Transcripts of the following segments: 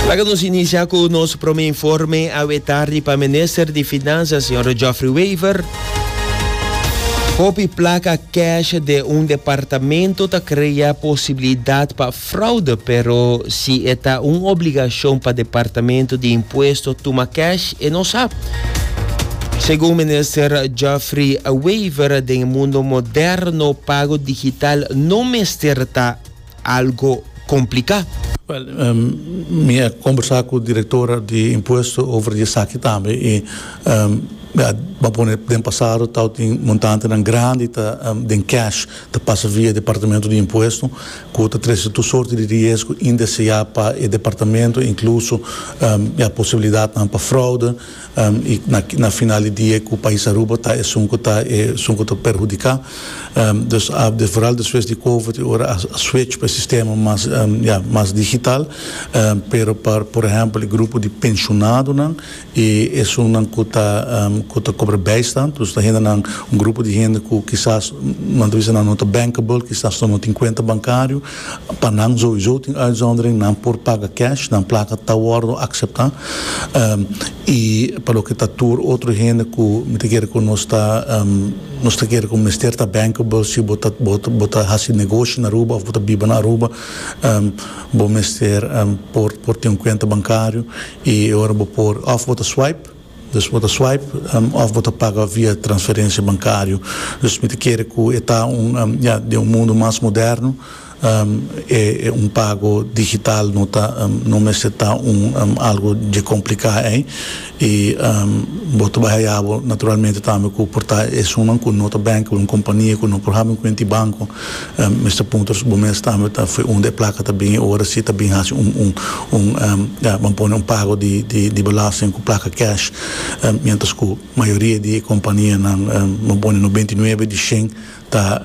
Laga nos inicia cu nos prome informe awe tardi pa Minister di Finanzas Señor Geoffrey Wever. Hopi placa cash de un departamento ta crea posibilidad pa fraude pero si e ta un obligacion pa Departamento di Impuesto tuma cash e no sa. Segun Minister Geoffrey Wever den e mundo moderno pago digital no mester ta. algo complica. Wel, mi a combersa cu directora di impuesto over di esaki tambe y mi a ban pone den pasado tao tin montantenan grandi ta den cash ta pasa via departamento di impuesto cu ta trece tur sorti di riesgo indesea pa e departamento incluso ya posibilidadnan pa fraude. I na final di dia e ku pais Aruba ta esun ku ta esun ku ta perhudiká. Dus ABD foral despues di covid i ora a switch pa e sistema mas ya mas digital pero pa por ehèmpel e grupo di penshonadonan i esunnan ku ta ku ta kobra bijstand dus ta hendenan un grupo di hende ku kisas nan ta bisa nan no ta bankable kisas nan no tin kuenta bankario. Pa nan zoizo tin uitzondering, nan por paga cash, nan plaka ta wordo akseptá. I pa loke ta tur otro hende ku mi ta kere ku nos ta nos ta kere ku mester ta bankable si bo ta bo ta bo ta hasi negoshi na Aruba òf bo ta biba na Aruba bo mester por por tin un kuenta bankario i e ora bo por òf bo ta swipe Pues bo ta swipe of bo ta paga via transferencia bancario. Pues mi ta kere cu e ta un ya den un mundo mas moderno e un pago digital no ta no mester ta un algo dje complica ey y bo ta bay hayabo naturalmente tambe cu por ta esunnan cu no ta bank un compania cu no por habi un cuenta di banco. Mister Punters, bo mes tambe ta fue un di e placa ta bin e ora si ta bin haci un, un, un, ya, bo a pone un pago di, di, di belasting cu placa cash, mientras cu mayoria di e companianan, bo a pone noventa i nuebe di shen, ta,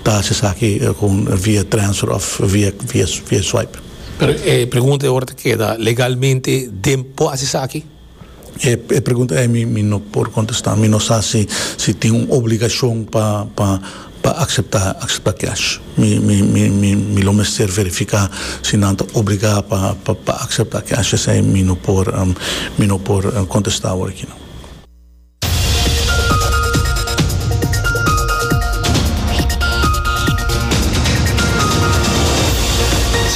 ta haci esaki con via transfer of via, via, via swipe. Pero e pregunta e ora ta keda, legalmente den por haci esaki? E pregunta ei mi no por kontestá. Mi no sa si si tin un obligashon pa pa pa akseptá akseptá kèsh. Mi mi mi mi mi lo mester verifiká si nan ta obligá pa pa akseptá kèsh. Esei mi no por mi no por kontestá awor aki no.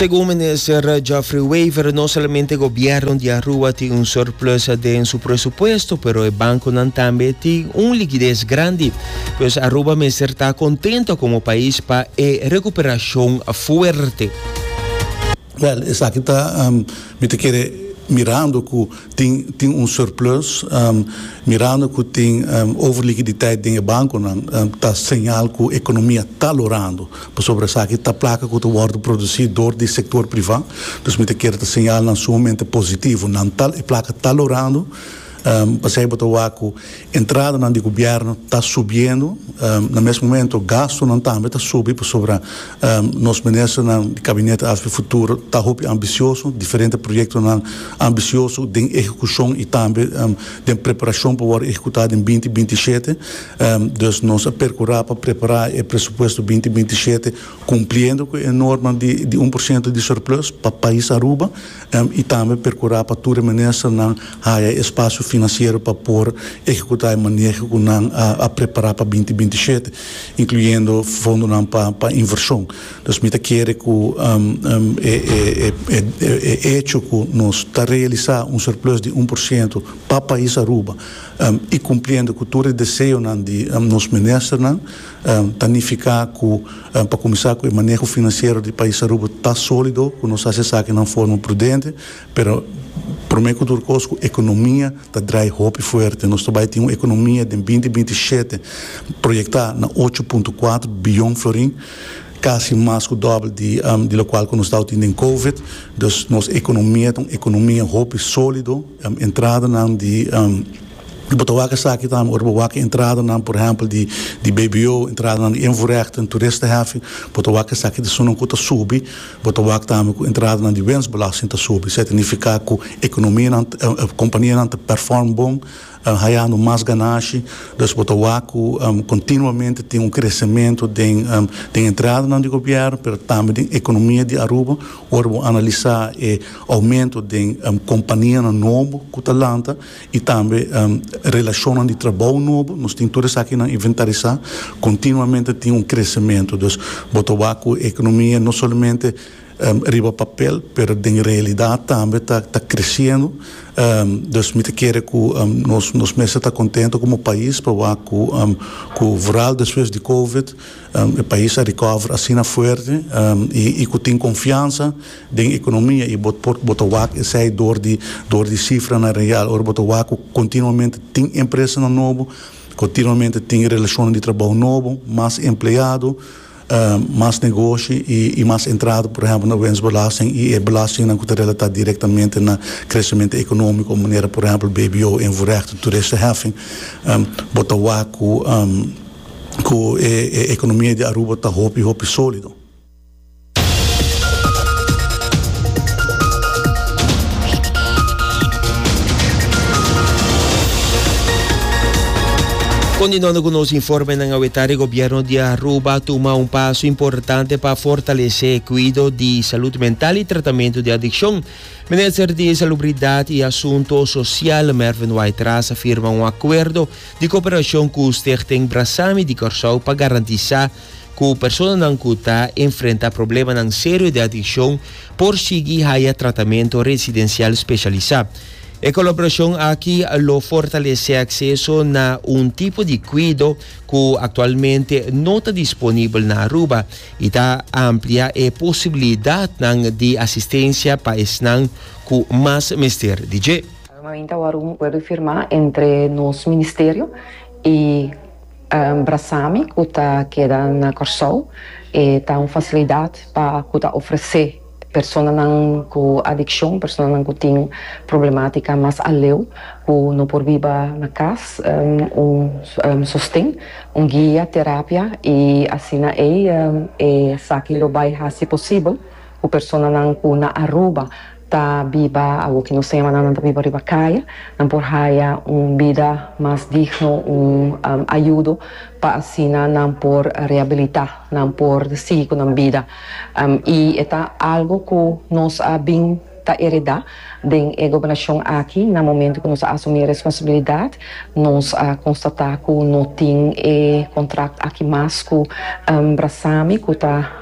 Segun minister Geoffrey Wever, no solamente gobierno di Aruba tin un surplus den su presupuesto, pero e banconan tambe tin un likides grandi. Pues Aruba mester ta contento como pais pa e recuperacion fuerte. Wèl, esaki ta, mi ta kere mirando ku tin tin un surplus, mirando ku tin overlikiditet den e bankonan, ta señal ku ekonomia ta lorando, pasobra esaki ta plaka ku ta wòrdu produsí dor di sektor privá. Dus mi ta kere ta señalnan sumamente positivo, nan ta e plaka ta lorando. Pasei bo ta wak ku entradanan di gubièrnu ta subiendo, na mes momento gastunan tambe ta subi pasobra nos ministernan di Gabinete AFP Futuro ta hopi ambisioso, diferente proyektonan ambisioso den ehekushon i tambe den preparashon pa wòrdu ehekutá den binti binti shete. Dus nos a perkurá pa prepará e presupuesto binti binti shete kumpliendo ku e norma di un por siento di surplus pa pais Aruba. y tambe percura pa tur e ministernan haya e espacio financiero pa por ehecuta e maneho cu nan a prepara pa binti binti shete, incluyendo fondonan pa inversion. Dus mi ta kere cu e hecho cu nos ta realisa un surplus di un por ciento pa pais Aruba y cumpliendo cu tur e deseonan di nos ministernan, Ta nifiká ku pa kuminsá ku e maneho finansiero di pais Aruba ta sólido, ku nos hasi esakinan forma prudente, pero promé ku tur kos ku ekonomia ta drai hopi fuerte. Nos ta bai tin un ekonomia den binti binti i shete proyektá na ocho punto kuater biyon florin, kasi mas ku dòbel di di lokual ku nos tava tin den covid. Dus nos ekonomia ta un ekonomia hopi sólido, entradanan di. Bo ta wak esaki tambe ora bo wak e entradanan, por ehempel, di di BBO, entradanan di invoerrechten, toeristenheffing, bo ta wak esaki ta sunan ku ta subi, bo ta wak tambe ku entradanan di winstbelasting ta subi. Esei ta nifiká ku ekonomianan, kompanianan ta perform bon, hayando mas ganashi. Dus bo ta wak ku kontinuamente tin un kresementu den den entradanan di gobièrnu pero tambe den ekonomia di Aruba ora bo analisá e oumentu den kompanianan nobo ku ta lanta. y tambe relacionnan di trabou nobo, nos tin tur esakinan inventarisá, continuamente tin un crecemento, dus bo ta wak cu e economia no solamente riba papel pero den realidad tambe ta ta creciendo, dus mi ta kere cu nos nos mester ta contento como pais pa wak cu cu vooral despues di covid e pais a recover asina fuerte y y cu tin confiansa. Den economia y bo por bo ta wak esey door di door di cifranan real ora bo ta wak cu continuamente tin empresanan nobo, continuamente tin relacionnan di trabao nobo, mas empleado, mas negoshi y mas entrada por ehempel na wensbelasting y e belastingnan cu ta relata directamente na crecemento economico manera por ehempel BBO, invoerheffing, toeristenheffing, bo ta wak cu cu e economia di Aruba ta hopi hopi solido. Kontinuando ku nos informenan awetá di gobièrnu di Aruba a tuma un paso importante pa fortalesé e kuido di salud mental i tratamentu di adikshon. Minister di Salubridat i Asunto Sosial, Mervin Waitras a firma un akuerdo di koperashon ku Stichting Brasami di Kòrsou pa garantisá ku personanan ku ta enfrenta problemanan serio di adikshon por sigui haya tratamentu residensial speshalisá. E kolaborashon aki lo fortalesé akseso na un tipo di kuido ku aktualmente no ta disponibel na Aruba i ta ampliá e posibilidatnan di asistensia pa esnan ku mas mester di dje. Aruba Inta Warum Wèrdufirmá entre nos Ministerio i. Brasami ku ta keda na Kòrsou e ta un fasilidat pa ku ta ofresé personanan ku adikshon, personanan ku tin problemátika mas aleu ku no por biba na kas, un sosten, un guia, terapia i asina ei. Esaki lo bai hasi posibel ku personanan ku na Aruba. ta biba awo ki nos semanan nan ta biba riba kaya nan por haya un bida mas digno un ayudo pa asina nan por rehabilita nan por sigui cu nan bida y e ta algo cu nos a bin ta ereda den e gobernacion aki na momento cu nos a asumi e responsabilidad nos a constata cu no tin e contract aki mas cu brasami cu ta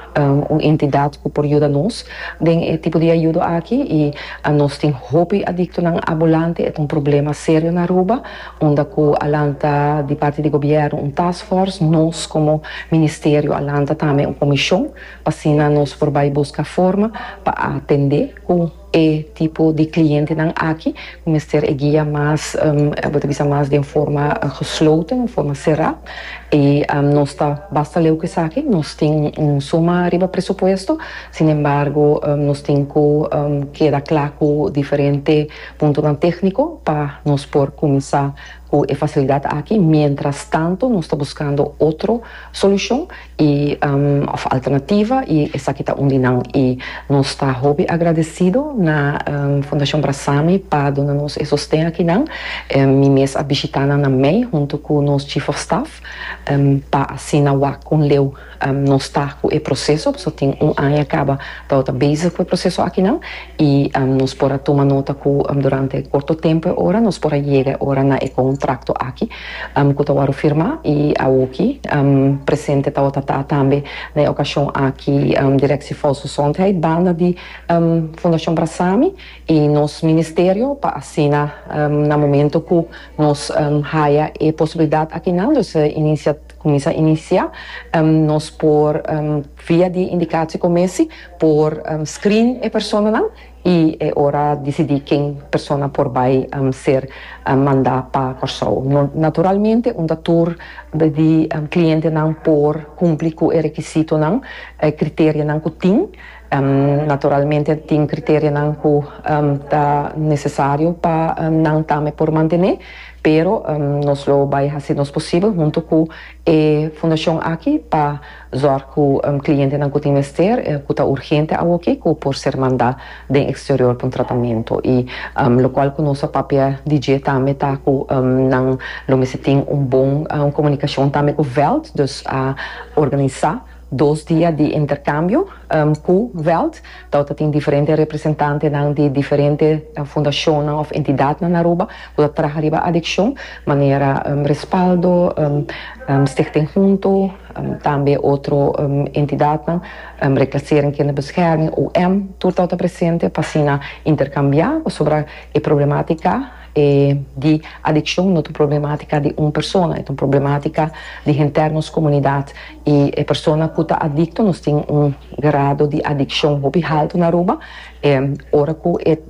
Un entidat cu por yuda nos den e tipo di ayudo aki y nos tin hopi adictonan abulante. E ta un problema serio na Aruba unda cu a lanta di parti di gobierno un task force. Nos como Ministerio a lanta tambe un comision pa asina nos por bay busca forma pa atende cu. E tipo di clientenan aki cu mester e guia mas, bo ta bisa mas den forma gesloten, den forma cera. Y nos ta basta leu cu esaki, nos tin un suma riba presupuesto, sin embargo nos tin cu keda cla cu diferente puntonan tecnico pa nos por cuminsa. cu e facilidad aki mientras tanto nos ta buscando otro solucion y of alternativa y esaki ta un di nan y nos ta hopi agradecido na Fundacion Brasami pa duna nos e sosten aki nan mi mes a bishita nan na mey hunto cu nos Chief of Staff pa asina wak con leu. Nos ta cu e proceso, nos a tin un aña caba tabata bezig cu e proceso akinan y nos por a tuma nota cu durante corto tempo e ora nos por a yega e ora na e contracto aki cu ta worde firma y awoki presente tabata ta tambe na e ocasion aki Directie Volksgezondheid banda di Fundacion Brasami y nos Ministerio pa asina na momento cu nos haya e posibilidad akinan, dus e inicia. Kuminsá inisiá nos por via di indikatio ku mesi por screen e personanan i e ora disidí ken persona por bai ser mandá pa Kòrsou. Naturalmente unda tur di klientenan por kumpli ku e rekisitonan, e kriterionan ku tin. Naturalmente tin kriterionan ku ta nesesario pa nan tambe por mantené, pero nos lo bai hasi nos posibel huntu ku e fundashon aki pa zòrg ku klientenan ku tin mester, ku ta urgente awoki, ku por ser mandá den eksterior pa un tratamentu. I lokual ku nos a papia di dje tambe ta ku nan lo mester tin un bon komunikashon tambe ku veld, dus a organisá. Dos dia di interkambio ku Veld, dau ta tin diferente representantenan di diferente fundashonnan òf entidatnan na Aruba ku ta traha riba adikshon, manera Respaldo, Stichting Junto, tambe otro entidatnan, Reclassering Kinderbescherming, UM, tur dau ta presente pa asina interkambiá pasobra e problematika. E di adiccion no ta un problematica di un persona, e ta un problematica di henter nos comunidad. Y e persona cu ta adicto nos tin un grado di adiccion hopi halto na Aruba. E ora cu e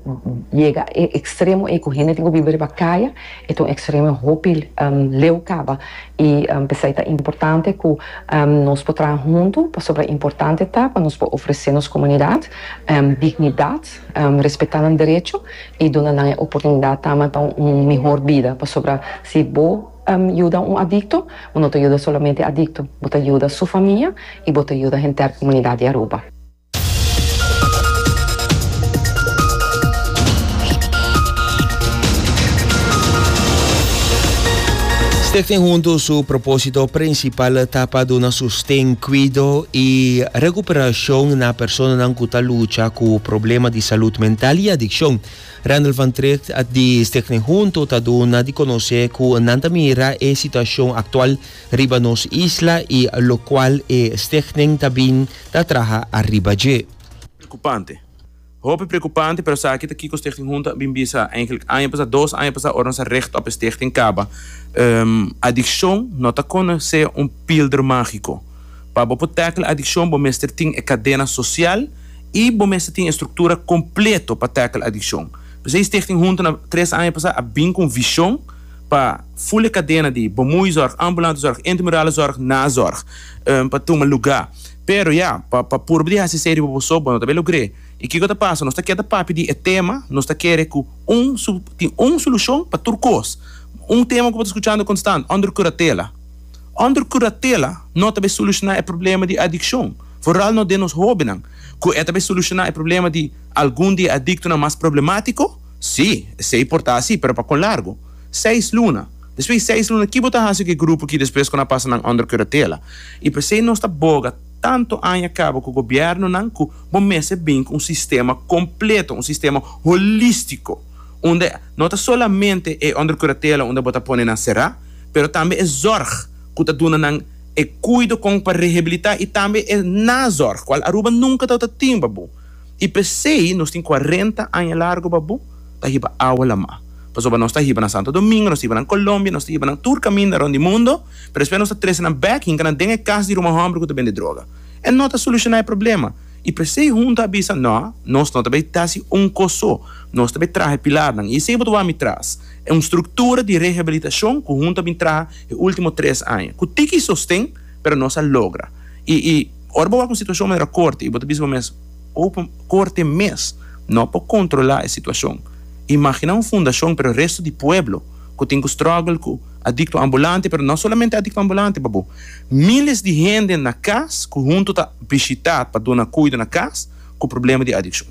yega e extremo ey cu hende tin cu biba riba caya e ta un extremo hopi leu caba. Y pesey ta importante cu nos por traha hunto pasobra importante ta pa nos por ofrece nos comunidad dignidad. Respetá nan derecho i duna nan e oportunidat tamba pa un mihor bida, pasobra si bo yuda un adikto, bo no ta yuda solamente e adikto, bo ta yuda su famia i bo ta yuda henter komunidat di Aruba. Stichting Huntu su propósito prinsipal ta pa duna su. Ten cuido y recuperacion na personanan cu ta lucha cu problema di salud mental y adiccion. Randall van Tricht di Stichting Hunto ta duna di conoce cu nan ta mira e situacion actual riba nos isla y locual e Stichting ta bin ta traha ariba dje. Preocupante. Hopi preokupante, pero esaki ta kiko Stichting Junto a bin bisa eigenlik aña pasá, dos aña pasá ora nos a richt op e Stichting kaba. Adikshon no ta kona sea un pilder mágiko. Pa bo por tèkla adikshon bo mester tin e kadena sosial i bo mester tin e struktura kompleto pa tèkla adikshon. P'esei Stichting Junto na tres aña pasá a bin ku un vishon pa ful e kadena di Bomuy zòrg, ambulante zòrg, intemurale zòrg, nazòrg pa tuma lugá. Pero ya, pa pa purba di hasi esei riba boso, bo no ta be logr'é. I kiko ta pasa? Nos ta keda papia di e tema, nos ta kere ku un su tin un solushon pa tur kos. Un tema ku bo ta skuchando konstant, Under Curatela. Under Curatela no ta be solushoná e problema di adikshon, foral no den nos hóbennan. Ku e ta be solushoná e problema di algun di e adiktonan mas problemátiko? Sí, esei por ta así, pero pa kon largu? Seis luna. Despues di seis luna kibo ta hasi ku e grupo ki despues ku nan pasa nan under kuratela? I p'esei nos ta boga tantu aña kaba ku gobièrnunan ku bo mester bin ku un sistema kompleto, un sistema holístiko unda no ta solamente e under kuratela unda bo ta pone nan será pero tambe e zòrg ku ta duna nan e kuido kon pa rehabilitá i tambe e nazòrg kual Aruba nunka tawata tin babu. I p'esei nos tin cuarenta aña largo babu pa hiba awa lamá. Pasobra nos ta hiba na Santo Domingo, nos ta hiba na Colombia, nos ta hiba na tur caminda rond di mundo, pero despues nos ta trece nan bek hinca nan den e cas di Ruma homber cu ta bende droga. E no ta soluciona e problema. I p'esei Hunta a bisa, No, nos no ta bay ta haci un cos so, nos ta bay traha e pilarnan. I esei bo ta wak mi tras. E un structura di rehabilitacion cu Hunta a bin traha e ultimo tres aña. Cu tiki y sosten. Pero nos a logra. I i ora bo wak un situashon manera korte i bo ta bisa bo mes, Ou pa korte mes no por kontrolá e situashon? Imaginá un fundashon pero resto di pueblo ku tin ku strògel ku adikto ambulante, pero no solamente adikto ambulante pabo, míles di hende na kas ku huntu ta bishitá pa duna kuido na kas ku problema di adikshon.